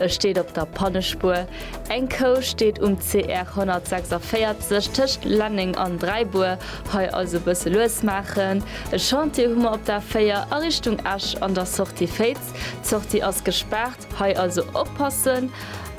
E steet op der Pannespuer. Eng Kou steet um CR 146 tëscht Lenneng an Dräibuer. Hei also bësse lues maachen. E Chantier hu mer op der 4 a Richtung Esch an der Sortie Féiz. D'Sortie ass gespaart, hei also oppassen.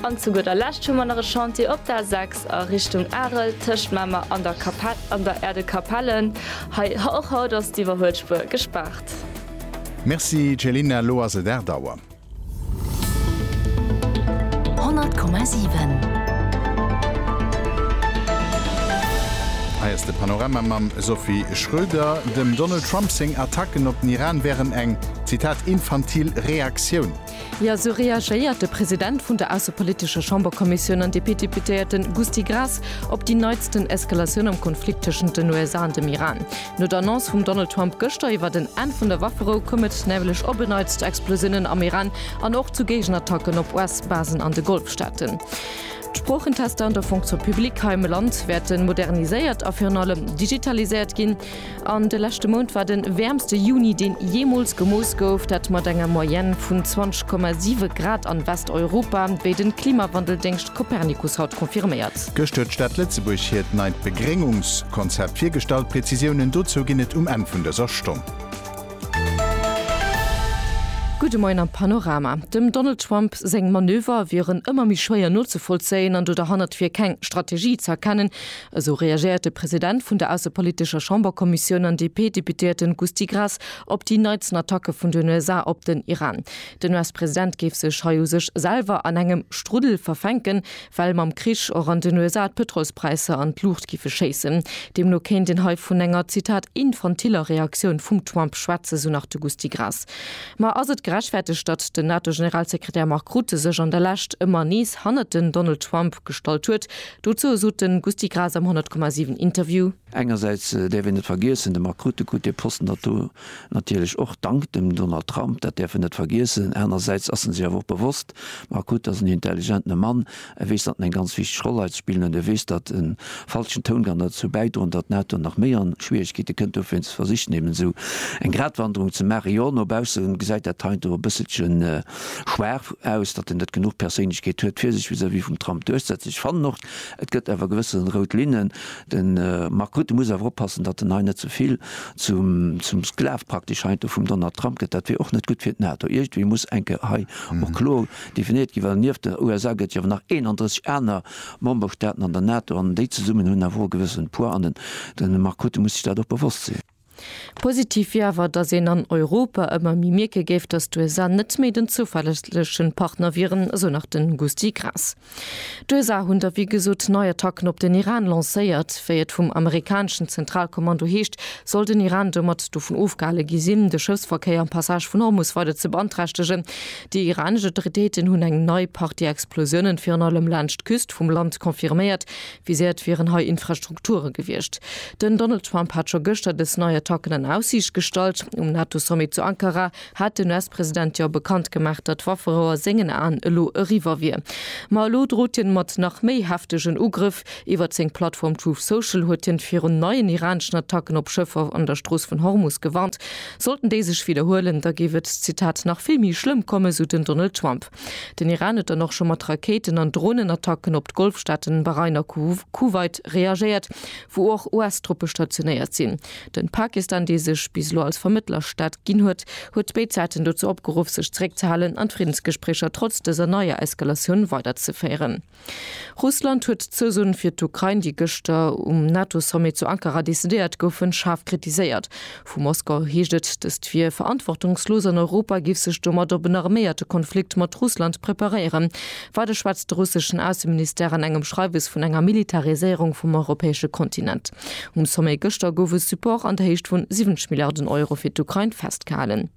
An zu gudder Lescht hu mer nach e Chantier op der 6 a Richtung Arel tëscht Mamer an der an der Erdekapelle. Hei och haut ass d'Iwwerhuelspuer gespaart. Merci Céline, elo ass et Är Dauer. Hei ass de Panorama mam Sophie Schröder. Dem Donald Trump seng Attacken op den Iran wären eng, Zitat, infantil Reaktioun. Jo, esou reagéiert de President vun der aussepolitescher Chamberkommissioun an DP-Deputéierte Gusty Graas op déi neitsten Eskalatioun am Konflikt tëschent den USA an dem Iran. No der Annonce vum Donald Trump gëschter iwwert en Enn vun der Wafferou koum et nämlech op en Neits zu Explosiounen am Iran an och zu Géigenattacken op US-Basen an de Golfstaaten. D'Sproochentester an der Fonction publique hei am Land wäerte moderniséiert a virun allem digitaliséiert ginn. An de leschte Mount war de wäermste Juni, deen jeemools gemooss gouf, dat mat enger Moyenne vun 20,7 Grad an Westeuropa, wéi de Klimawandeldéngscht Copernicus haut confirméiert. Gëscht huet d'Stad Lëtzebuerg hiert neit Begréngungskonzept virgestallt. Präzisiounen dozou ginn et um Enn vun dëser Stonn. Gudde Moien am Panorama. Dem Donald Trump seng Manöver wieren ëmmer méi schwéier nozevollzéien an do derhannert wier keng Strategie ze erkennen, esou reagéiert de President vun der aussepolitescher Chamberkommissioun an DP-Deputéierten Gusty Graas op déi neitsten Attacke vun den USA op den Iran. Den US-President géif sech hei u sech selwer an engem Struddel verfänken, Well mam Krich och an den USA d'Pëtrolspräisser an d'Luucht giffe schéissen. Deemno kéint een hei vun enger, Zitat, infantiller Reaktioun vum Trump schwätzen, sou nach de Gusty Graas. Ma ass et gerechtfertegt, datt den NATO-Generalsekretär Mark Rutte sech an der Lescht ëmmer nees hannert den Donald Trump gestallt huet? Dozou sot de Gusty Graas am 100,7 Interview. Engersäits däerf een net vergiessen, dem Marc Rutte krut dee Posten nato natierlech och dank dem Donald Trump, dat däerf en net vergiessen. Anersäits ass en sech awer och bewosst, Marc Rutte ass en intelligentene Mann, e weess, datt en eng ganz wichteg Roll hei ze spillen huet, e weess, datt e falschen Toun kann derzou bäidroen, datt d'NATO nach méi a Schwieregkeete kënnt. Dofir hunn se versicht némmen esou eng Gratwanderung ze maachen. Jo, no bausse gesäit dat heiansdo e bësselche schwaach aus, datt en net genuch Perséinlechkeet huet, fir sech vis-à-vis vum Trump duerchsetzen. Ech fannen och, et gëtt awer gewësse rout Linnen. De Mark Rutte muss awer oppassen, datt en hei net ze vill zum Sklav praktesch heiansdo vum Donald Trump gëtt. Dat wier och net gutt fir d'NATO. Iergendwéi muss eng Kéier hei och kloer definéiert ginn, well nieft den USA gëtt et jo awer nach 31 aner Memberstaaten an der NATO an déi zesummen hunn awer och e gewëssene Poids an de Mark Rutte muss sech dat och bewosst sinn. Positiv wier awer, datt een an Europa ëmmer méi mierke géif, datt d'USA net méi den zouverlässleche Partner wieren, esou nach de Gusty Graas. D'USA hunn da wéi gesot nei Attacken op den Iran lancéiert. Wéi et vum amerikaneschen Zentralkommando heescht, soll den Iran domat dovun ofgehale gi sinn, de Schëffsverkéier am Passage vun Hormus weider ze beanträchtegen. Déi iranesch Autoritéiten hunn eng nei Partie Explosiounen virun allem laanscht d'Küst vum Land confirméiert, Viséiert wieren hei Infrastrukture gewiescht. Den Donald Trump hat scho gëschter dës nei Attacken an Aussiicht gestallt. Um NATO-Sommet zu Ankara hat den US-President jo bekannt gemaach, datt d'Wafferouer sengen Aen elo eriwwer wier. Ma elo drot hien mat nach méi heftegen Ugrëff. Iwwert seng Plattform Truth Social huet hien virun neien iraneschen Attacken op Schëffer an der Strooss vun Hormus gewarnt. Sollten déi sech widderhuelen, da géif et, Zitat, nach vill méi schlëmm kommen, sou den Donald Trump. Den Iran huet dann och scho mat Rakéiten an Dronenattacken op d'Golfstaaten Bahrain a Kuwait reagéiert, wou och US-Truppe stationéiert sinn. Den Pakistan, dee sech bis elo als Vermëttlerstaat ginn huet, huet béid Säiten dozou opgeruff, sech zeréckzehalen an d'Friddensgespréicher trotz dëser neier Eskalatioun weiderzeféieren. Russland huet d'Zousoen fir d'Ukrain, déi gëschter um NATO-Sommet zu Ankara decidéiert goufen, schaarf kritiséiert. Vu Moskau heescht et, dëst wier verantwortungslos an Europa géif sech domat op en arméierte Konflikt mat Russland preparéieren. Weider schwätzt de russeschen Ausseministère an engem Schreiwes vun enger Militariséierung vum europäesche Kontinent. Um Sommet gëschter gouf e Support an der Héicht vun 70 Milliarden Euro fir d'Ukrain festgehalen.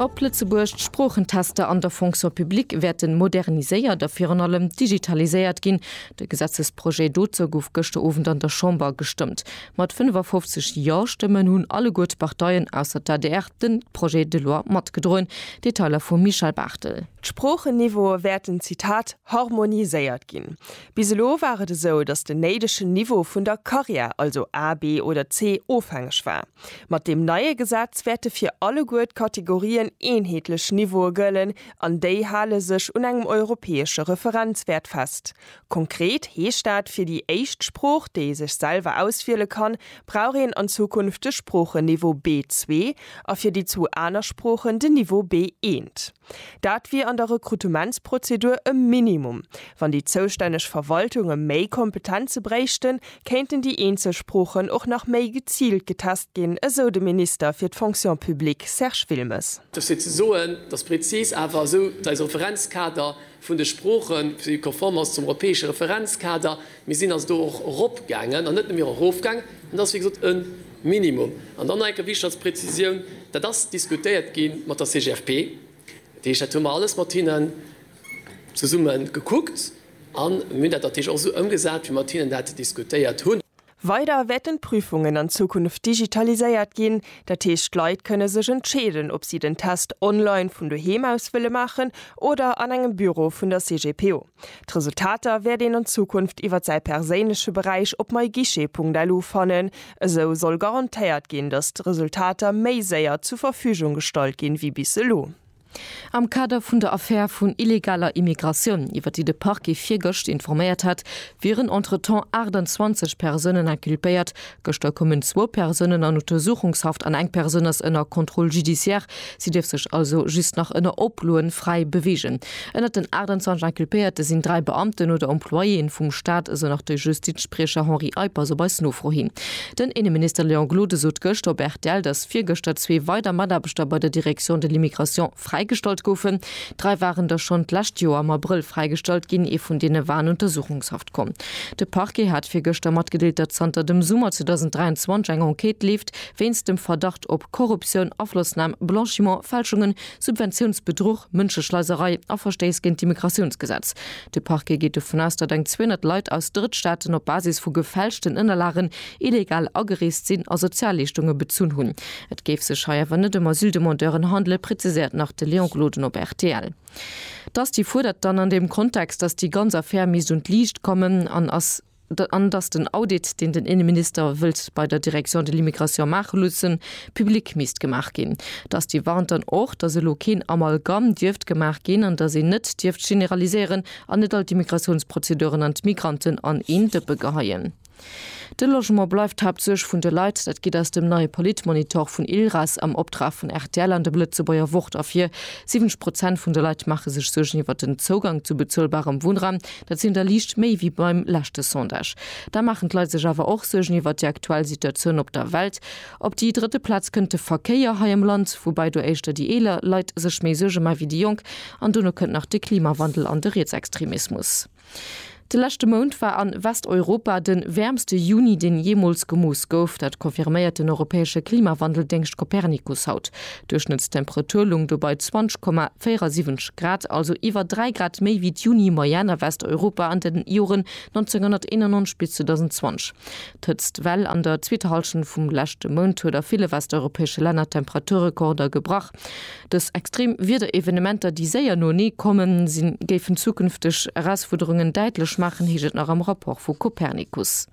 Op Lëtzebuerg, D'Sproochentester an der Fonction publique wäerten moderniséiert a virun allem digitaliséiert ginn. De Gesetzesprojet dozou gouf gëschter Owend an der Chamber gestëmmt. Mat 55 Ja-Stëmmen hunn alleguer d'Parteien, ausser d'ADR, de Projet de loi matgedroen. Detailer vum Michel Barthel. D'Sproochen-Niveaue wäerten, Zitat, harmoniséiert ginn. Bis elo war et esou, datt den néidegen Niveau vun der Carrière, also A, B oder C, ofhängeg war. Mat deem neie Gesetz wäerte fir alleguer d'Kategorien eenheetlech Niveaue gëllen an déi hale sech un engem europäesche Referenzwäert fest. Konkret heescht dat, fir déi éischt Sprooch, déi ee sech selwer auswiele kann, brauch een an Zukunft de Sproochen-Niveau B2 a fir déi zwou aner Sproochen den Niveau B1. Dat wier an der Rekrutementsprozedur e Minimum. Wann déi zoustänneg Verwaltunge méi Kompetenze bréichten, kéinten déi eenzel Sproochen och nach méi geziilt getest ginn, esou de Minister fir d'Fonction publique Serge Wilmes. Dofir ze soen, dass prezis awer esou dei Referenzkader vun de Sproochen, déi konform ass zum europäesche Referenzkader. Mir sinn also do och eropgaangen an net nëmme erofgaangen. Dat ass wéi gesot e Minimum. An dann nach eng Kéier wichteg als Präzisioun, Dat ass diskutéiert gi mat der CGFP. Dat heescht, dat hu mer alles mat hinnen zesumme gekuckt an mir hunn dat natierlech och esou ëmgesat, wéi mer mat hinnen dat diskutéiert hunn. Weider wäerten d'Prüfungen an Zukunft digitaliséiert ginn, dat heescht d'Leit kënne sech entscheeden, ob si den Test online vun doheem aus wëlle maachen oder an engem Büro vun der CGPO. D'Resultater wäert een an Zukunft iwwer säi perséinleche Beräich op myguichet.lu fannen. Esou soll garantéiert ginn, datt d'Resultater méi séier zur Verfügung gestallt ginn, wéi bis elo. Am Kader vun der Affär vun illegaler Immigratioun, iwwer déi de Parquet virgëscht informéiert hat, wieren entretemps 28 Persounen inculpéiert. Gëschter koumen zwou Persounen an Untersuchungshaft an eng Persoun ass ënner Contrôle judiciaire. Si dierf sech also just nach ënner Oploen fräi beweegen. Ënnert den 28 Inculpéierte sinn dräi Beamten oder Employéen vum Staat, esou nach de Justizspriecher Henri Eiper, esou op eis Nofro hin. Den Inneminister Léon Gloden sot gëschter op rtl, datt virgëschter zwee weider Mataarbechter bei der Direction de l'immigration fräigestallt goufen. Dräi waren der schonn d'lescht Joer am Abrëll fräigestallt ginn, ee vun deene war an Untersuchungshaft komm. De Parquet hat virgëschter matgedeelt, datt zanter dem Summer 2023 eng Enquête leeft wéinst dem Verdacht op Korruptioun, Aflossnam, Blanchiment, Fälschungen, Subventiounsbedruch, Mënscheschleiserei a Verstéiss géint d'Immigratiounsgesetz. De Parquet geet dovun aus, datt eng 200 Leit aus Drëttstaaten op Basis vu gefälschten Ënnerlagen illegal agereest sinn a Sozialleeschtunge bezunn hunn. Et géif sech hei awer net ëm Asyldemandeuren handele, preziséiert nach de Léon Gloden op rtl. D'Asti fuerdert dann an deem Kontext, datt déi ganz Affär misst un d'Liicht kommen an ass. an dass den Audit, deen den Inneminister wëllt bei der Direction de l'immigration maache loossen, public misst gemaach ginn. Dass déi warnt dann och, dass elo keen Amalgame dierft gemaach ginn an dass een net dierft generaliséieren an net all d'Immigrationsprozeduren an d'Migranten an een Dëppe geheien. De Logement bleift d'Haaptsuerg vun de Leit. Dat geet aus dem neie Politmonitor vun ILRAS am Optrag vun rtl an dem Lëtzebuerger Wort ervir. 70 Prozent vun de Leit maache sech Suergen iwwert den Zougang zu bezuelbarem Wunnraum. Dat sinn der liicht méi wéi beim leschte Sondage. Da maachen d'Leit sech awer och Suergen iwwert déi aktuell Situatioun op der Welt. Op déi drëtte Plaz kënnt de Verkéier hei am Land, woubäi do éischter déi eeler Leit sech méi Suerge ma wéi déi Jonk. An dono kënnt nach de Klimawandel an de Rietsextremismus. De leschte Mount war a Westeuropa de wäermste Juni, deen jeemools gemooss gouf. Dat confirméiert den europäesche Klimawandeldéngscht Copernicus haut. Duerchschnëttstemperatur lung do bei 20,47 Grad, also iwwer 3 Grad méi wéi d'Juni-Moyenne a Westeuropa an den Joren 1991 bis 2020. D'Hëtztwell an der zweeter Hallschent vum leschte Mount huet a ville westeuropäesche Länner Temperaturrekorder gebrach. Dës extrem Wiederevenementer, déi séier noenee komme sinn, géifen zukünfteg Erausfuerderungen däitlech maachen, heescht et nach am Rapport vu Copernicus.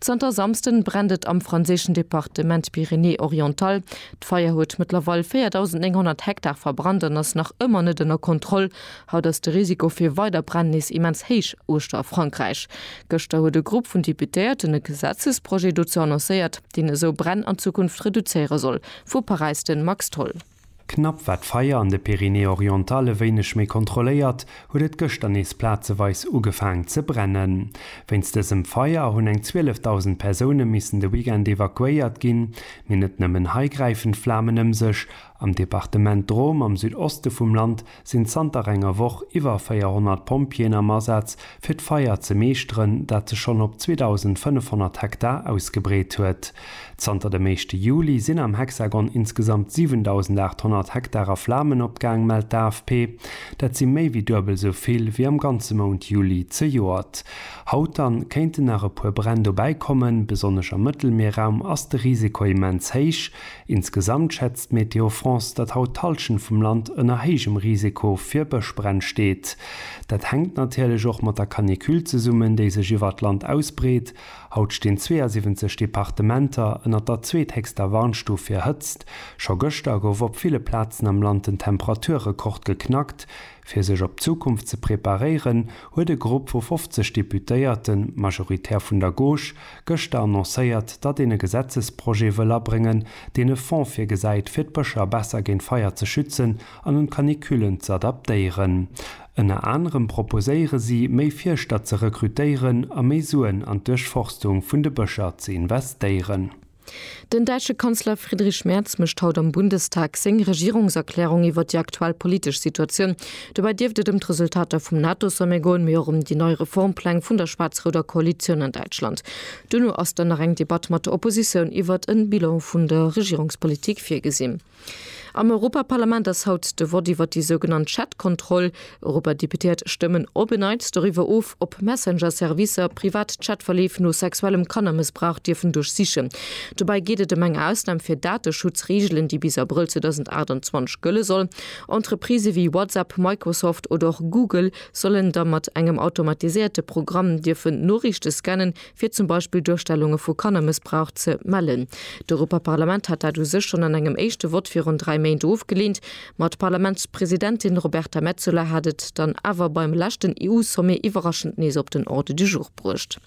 Zanter Samsden brennt et am franséischen Departement Pyrénées-Orientales. D'Feier huet mëttlerweil 4.900 Hektar verbrannt an ass nach ëmmer net ënner Kontroll. Haut ass de Risiko fir weider Bränn nees immens héich uechter a Frankräich. Gëschter huet e Grupp vun Deputéierten e Gesetzesprojet dozou annoncéiert, deen esou Bränn an Zukunft reduzéiere soll. Vu Paräis de Max Tholl. Knapp war d'Feier an de Pyrénées-Orientales e wéineg méi kontrolléiert, huet et gëschter nees plazeweis ugefaang ze brennen. Wéinst dësem Feier hunn eng 12.000 Persoune missen de Weekend evakuéiert ginn. Mee net nëmmen hei gräifen d'Flamen ëm sech. Am Departement Drôme am Südoste vum Land sinn zanter enger Woch iwwer 400 Pompjeeën am Asaz, fir d'Feier ze meeschteren, dat sech schonn op 2.500 Hektar ausgebreet huet. Zanter dem éischte Juli sinn am Hexagon insgesamt 7.800 Hektar a Flamen opgaang, mellt d'AFP. Dat si méi wéi duebel esou vill wéi am ganze Mount Juli zejoert. Haut dann kéinten nach e puer Bränn dobäikommen. Besonnesch am Mëttelmierraum ass de Risiko immens héich. Insgesamt schätzt Météo France, datt haut d'Hallschent vum Land ënner héijem Risiko fir Bëschbränn steet. Dat hänkt natierlech och mat der Canicule zesummen, déi sech iwwert d'Land ausbreet. Haut stinn 72 Departementer ënner der zweethéchster Warnstuf fir Hëtzt. Scho gëschter gouf op ville Plazen am Land den Temperaturrekord geknackt. Fir sech op d'Zukunft ze preparéieren, huet e Grupp vu 50 Deputéierten, majoritär vun der Gauche, gëschter annoncéiert, datt een e Gesetzesprojet wëll abréngen, deen e Fonds virgesäit, fir d'Bëscher besser géint Feier ze schützen an un d'Canicullen ze adaptéieren. Ënner anerem proposéiere si, méi Fierschter ze rekrutéieren a méi Suen an d'Duerchforstung vun de Bëscher ze investéieren. Den däitsche Kanzler Friedrich Merz mécht haut am Bundestag seng Regierungserklärung iwwer déi aktuell politesch Situatioun. Dobäi dierft et ëm d'Resultater vum NATO-Sommet goen, mee och ëm déi nei Reformpläng vun der schwaarz-rouder Koalitioun an Däitschland. Duerno ass dann nach eng Debatt mat der Oppositioun iwwer e Bilan vun der Regierungspolitik virgesinn. Am Europaparlament ass haut de Vott iwwer déi sougenannt Chat-Kontroll. Europadeputéiert stëmmen op en Neits doriwwer of, ob Messenger-Servicer privat Chat-Verleef no sexuellem Kannermëssbrauch dierfen duerchsichen. Dobäi geet et ëm eng Ausnam fir Dateschutzreegelen, déi bis Abrëll 2028 gëlle soll. Entreprisë wéi WhatsApp, Microsoft oder och Google sollen da mat engem automatiséierte Programm dierfen Noriichte scannen, fir zum Beispill Duerstellunge vu Kannermëssbrauch ze mellen. D'Europaparlament hat dat u sech schonn an engem éischte Vott virun dräi Méint ofgeleent, ma d'Parlamentspresidentin Roberta Metsola hat et dann awer beim leschten EU-Sommet iwwerraschend nees op den Ordre du jour bruecht.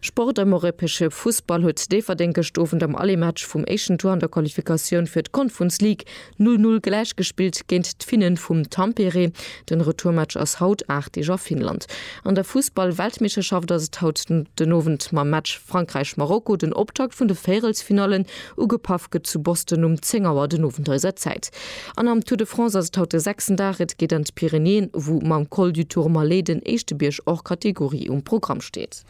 Sport am europäesche Fussball huet Déifferdeng gëscht Owend am Aller-Match vum éischten Tour an der Qualifikatioun fir d'Confrnce League Null Null gläichgespillt géint d'Finnen vum Tampere. Den Retourmatch ass haut, aacht Deeg a Finnland. An der Fussball-Weltmeeschterschaft ass et haut den Owend mam Match Frankräich-Marokko den Optakt vun de Véierelsfinallen. Ugepaff gëtt zu Boston um 10 Auer den Owend eiser Zäit. An am Tour de France ass et haut de sechsten Dag. Et geet an d'Pyrenäen, wou mam Col du Tourmalet den éischte Bierg hors catégorie um Programm steet.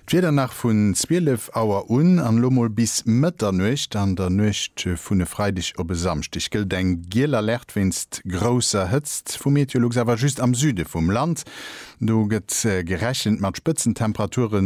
D'Wieder nach vun 12 Auer un an elo mol bis Mëtternuecht. An der Nuecht vun e Freideg op e Samschdeg gëllt eng giel Alerte wéinst grousser Hëtzt vu Meteolux, awer just am Süde vum Land. Do gëtt gerechent mat Spëtzentemperature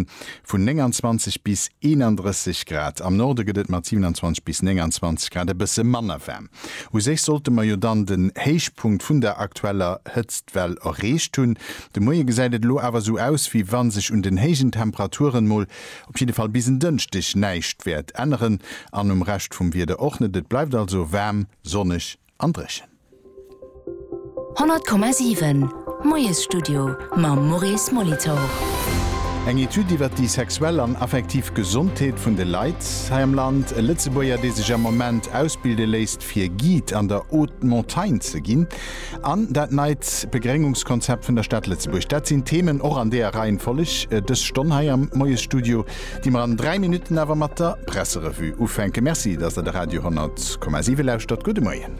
vun 29 bis 31 Grad. Am Norde gëtt et mat 27 bis 29 Grad e bësse manner waarm. U sech sollte mer jo dann den Héichpunkt vun der aktueller Hëtztwell erreecht hunn. De Moie gesäit et elo awer esou aus, wéi wa sech un den héijen Temperaturen mol, op jidde Fall bis en Dënschdeg, näischt wäert änneren an um Rescht vum Wieder och net. Et bleift also waarm, sonneg an dréchen. 100,7 Moiesstudio mam Maurice Molitor. Eng Etüd iwwer déi sexuell an affektiv Gesondheet vun de Leit hei am Land. E Lëtzebuerger, dee sech am Moment ausbilde léisst, fir Guide an der Haute Montagne ze ginn, an dat neit Begréngungskonzept vun der Stad Lëtzebuerg, dat sinn d'Themen, och an deeër Reihenfolleg, dës Stonn hei am Moiesstudio, déi mer an dräi Minutten awer mat der Presserevue ufänken. Merci, dass Der de Radio 100,7 lauschtert. Gudde Moien.